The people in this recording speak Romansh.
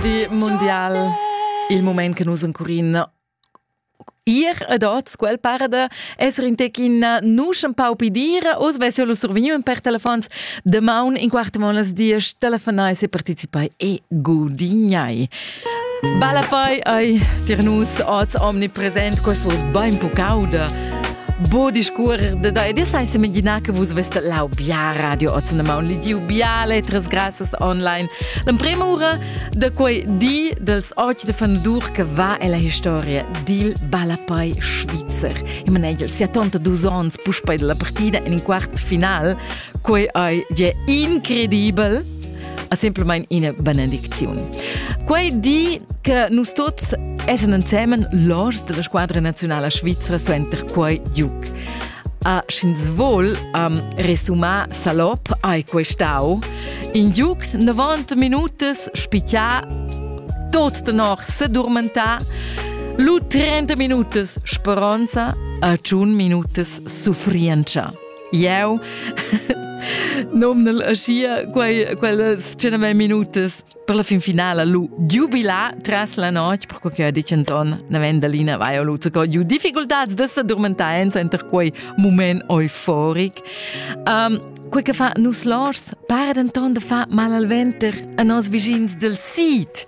di mondial il moment che nus encurin ir ad oz quel parada esser in tecin nusch un pau pi dire oz vess io lu survegniu per telefons de maun in quart monas dies telefonai se participai e gudignai Balla poi ai tir nus oz omnipresent quel fos bein pucauda Bo discurrer de da ed sai semiginar che vus veste lau bia radio ozinema un ligiu bia letras grassas online. L'emprema ura de quei di dels oci de Fanadur che va ella historia dil Ballapei Schweizer. Imanegel sia tonta dus ons puspei della partida in in quart final, quei ei je incredibel a semplamain ina benedicziun. Quei di che nus tuts essan ensemen l'ors della squadra nazionala svizra suenter quei giug. A sch'ins vol am resumar salop hai questau in giug 90 minutas spichà tot tenor sedurmentà lu 30 minutas speronza a 100 minutas suffrientscha. Jau nomnel aschia quei, quellas tschename minutas per la fin finala lu giubila tras la notg, per quei che dichens on Navendelina vai lu co giu difficultats de sa dormentaenza enter quei moment euforic. Um, quei che fa nus lors para denton de fa mal al venter a nos vischins del sid.